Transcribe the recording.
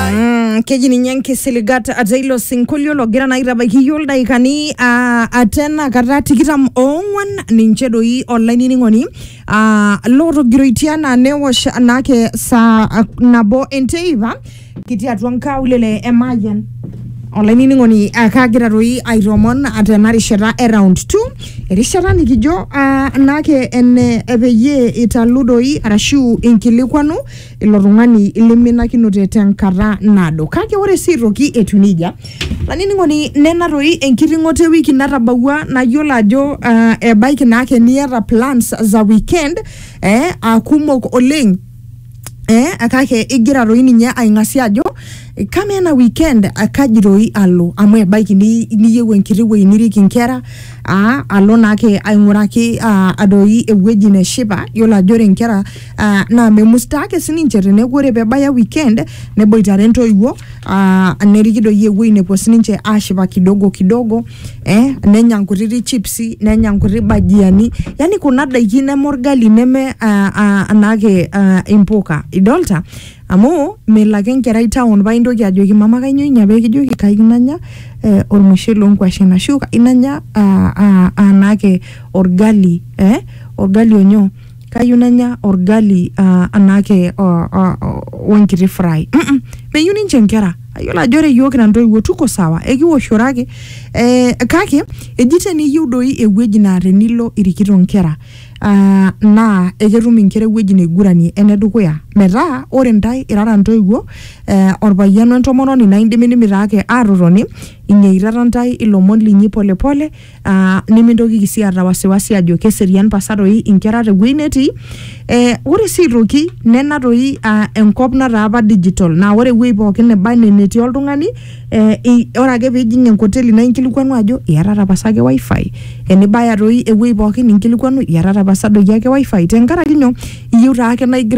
Mm, keji ninye nkisiligat ata ilo sinkolio logira naa aitabaiki iyiok ildaikani ah, ata ena kata tikitam oong'wan ninche doi olainining'oni ah, lootogiroitie anaa newosh naake saa ah, nabo enteipa kitii atua nkaulele e Mayian olainining'oni ah, kagira doi aitoomon ah, tena rishata e round 2 erishata nikijo ah, naake ene peyie italu doi arashu inkilikwanu ilo tung'ani liminakinote tenkata naado kake ore sii aitoki etiu nejia lanining'oni nena toi enkiting'oto ewiki natabawua nayiolo ajo uh, ebaiki naake niata plans za weekend eh, akumok oleng eh, kake igira toi ninye aing'asia ajo eh, kama ena weekend eh, kaji toi alo amu ebaiki ni- niyieu enkiti wueji nirik inkera ah, alo naake aing'uraki ah, doi ewueji neshipa yiolo ajo ore inkera Uh, naa memustaa ake sininche teneeku ore pebaya weekend neboitare ntoiwuo uh, neriki doi ewuei nepuo sininche ashipa kidogo kidogo eh, nenya nkutiti chipsi nenya nkuti bajiani yani kuna daiki neme orgali neme uh, uh, anaake uh, impuka idolta amu melo ake enkerai town paa intoki ajoki mama kainyoo inya pee kijoki kayieu nanya eh, ormushele onkuashen ashu kayieu nanya uh, uh, anaake orgali eh, orgali onyoo kayieu nanya orgali uh, anaake wenkiti uh, uh, fry mm -mm. meyieu ninche inkera ayiolo ajo ore iyiook ina ntoiwuo tuko sawa ekiwoshoro ake eh, kake eji teniyieu doi ewueji naa tenilo irikito inkera uh, naa eketum inkera ewueji naiguranie enedukuya metaa ore ntae irara ntoiwuo eh, orpayian wentomononi naa indimidimi taake atotoni inyeitata ntae ilomon linyi polepole pole, Uh, nimintokiki sii aata wasiwasi ajo keserian pasa toi inkera tewueji netii eh, ore sii aitoki nena toi uh, enkop nataa apa digital naa ore ewueji pookin neba enaa enetii oltung'ani eh, i- ore ake piijing enkoteli naa inkilikuanu ajo iyatata pasa ake wifi enibaya toi ewueji pookin inkilikuanu iyatata pasa doi ake wifi tenkaraki nyoo iyieu taake naa igira